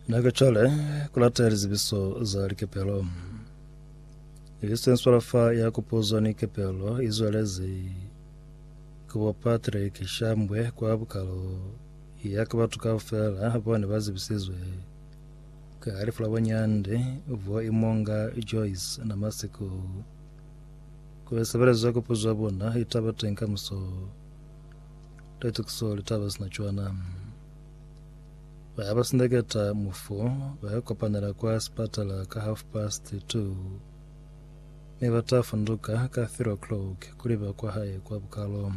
Na ka cwale ku lata lizibiso za likepelo. Eastern Swalafa ya kupozwa ni kepelo i zwelezi ku bo Patrick Shambwe kwa bukalo ya ka batu kaufela bone ba zibisizwe ka lifu la bonyandi bo imonga Joyce na Masiko. Ku sebelezwa kupuzwa bona itaba teng kamuso. Leta kuso litaba sina cwana. Baya ba sindeketa mufu baya kopanela kwa sipatala ka half past two me bata funduka ka three o'clock kuliba kwa hae kwa bukalo.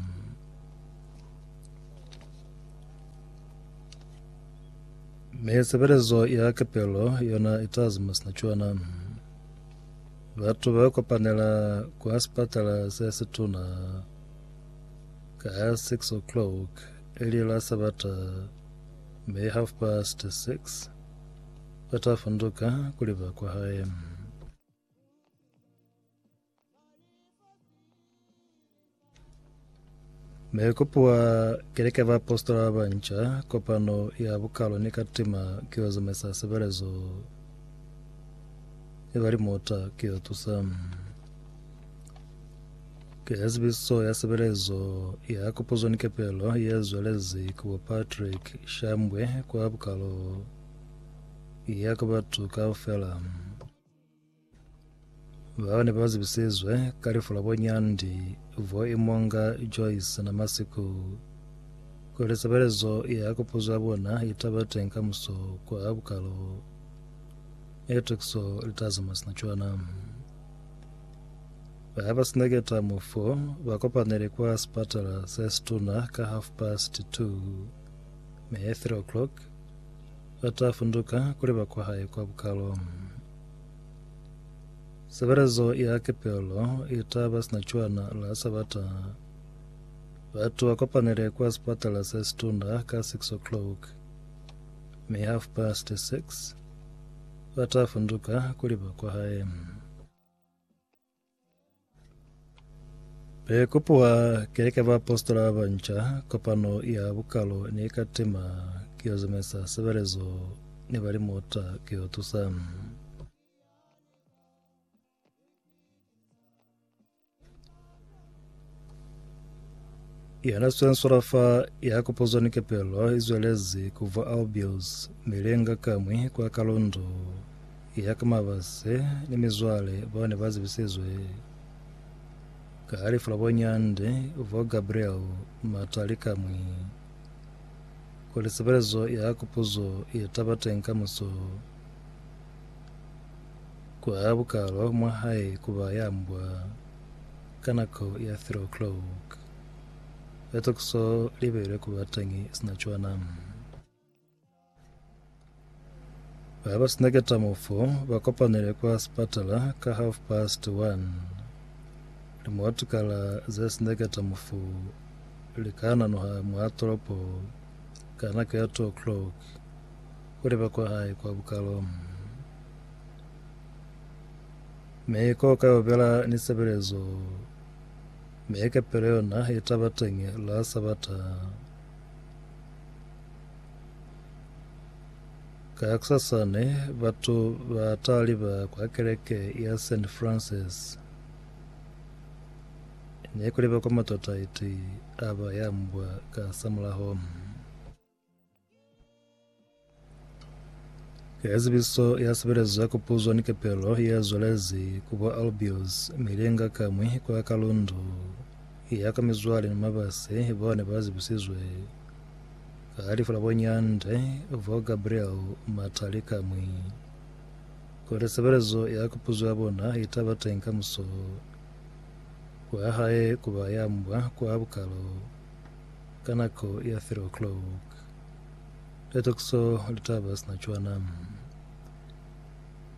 Me sebelezo ya kepelo yona itazima sina cwana. Batu ba kopanela kwa sipatala se situna Ka ha six o'clock, eli la Sabata, May half past six, ba ta funduka kuli ba kwa hae. Me kopiwa kereke ba apostola ba banca kopano ya bukalo ni ka tima ke yo zamaisa sebelezo e ba limota ke yo tusa Ki ya Zibiziso ya Sebelezo ya Kupuzo ni Kepelo ye zwelezi ku bo Patrick Shambwe kwa Bukalo ya ku batu kaufela bao ne ba zibisizwe ka lifu la bonyandi vo imonga Joyce na Masiku kuli sebelezo ya kupuzo ya bona itaba teng ka muso kwa Bukalo e Tukiso litazi masina cwana. Habasina keta mufu, bakopanele kwa sipatala sesituna ka half past two, mi at three o'clock bata funduka kuli ba kwahae kwa bukalo. Sebelezo ya kepelo itaba sina cwana la Sabata. Batu bakopanele kwa sipatala sesituna ka six o'clock, mi half past six bata funduka kuli ba kwahae. Be kopuwa keleke ba apostola ba nca, kopano ya bukalo ne ka tema ki yo zamaisa sebelezo ne ba li mota ki yo tusa. Yana swenswela fa ya kopozwa ni kepelo i zwelezi ku vwa Albios milenga kamwi kwa kalondo ya ka mabase ni mizwale bao ne ba zibisizwe ka lifu la bonyande vwa Gabriel Matali kamwi kuli sebelezo ya kopozo ye taba teng kamuso Ku aha bukalwa mwa hae ku ba ya mbwa ka nako ya three o'clock. Ba ta ku so libele ku ba teñi sina cwana. Ba ba sina ketamo fo ba kopanele kwa sipatala ka half past one. Limotukala ze sina ketamo fo li ka nanoha mwa tolopo ka nako ya two o'clock. Ku leba kwa hae kwa bukalo mi ko kaubela ni sebelezo, mi kapelo yona i ta ba teñi la Sabata. Kakusasani batu ba ta liba kwa keleke ya Saint Francis, ni ku leba kwa matataiti a ba ya mbwa ka samulaho. Ka zibiso ya sebelezo ya kupuzwa ni kepelo ya zwalezi ku bo Albios milinga kamwi kwa Kalundu ya ka mizwale ni mabase bao ne ba zibisizwe ka lifu la bonyande bo Gabriel Matali kamwi kuli sebelezo ya kupuzwa ya bona itaba teng ka muso kwa hae kuba ya mbwa kwa bukalo Ka nako ya three o'clock, litokiso litaba sina cwana.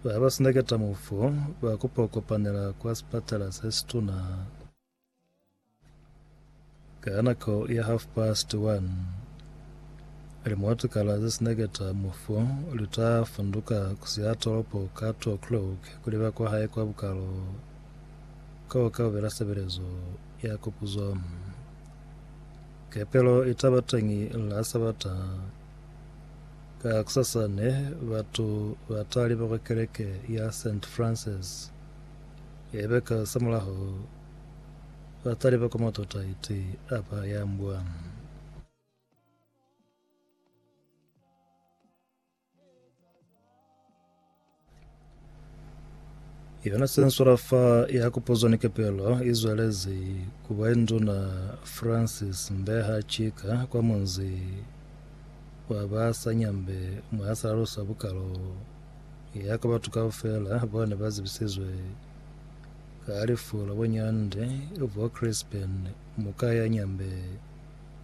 Ba ba sindaketa mufu ba kupo kopanela kwa sipatala se situna. Ka nako ya half past one, limotukala ze sindaketa mufu lita funduka kusiha tolopo ka two o'clock kuliba kwa hae kwa bukalo. Kao kaubela sebelezo ya kupuzo. Kepelo itaba teñi la Sabata kakusasa ne batu bataliba kwa keleke ya Saint Francis. Yaiba ka samulaho bataliba kwa matota iti apa ya mbwa. Yona sensora fa ya kupozwa ni kepelo i zwelezi ku ba induna Francis Mbeha Chika kwa munzi wa ba sa nyambe mwa ya salalusa bukalo ya ka batu kaufela bao ne ba zibisizwe ka lifu la bo Nyande bo Crispen Mukayanyambe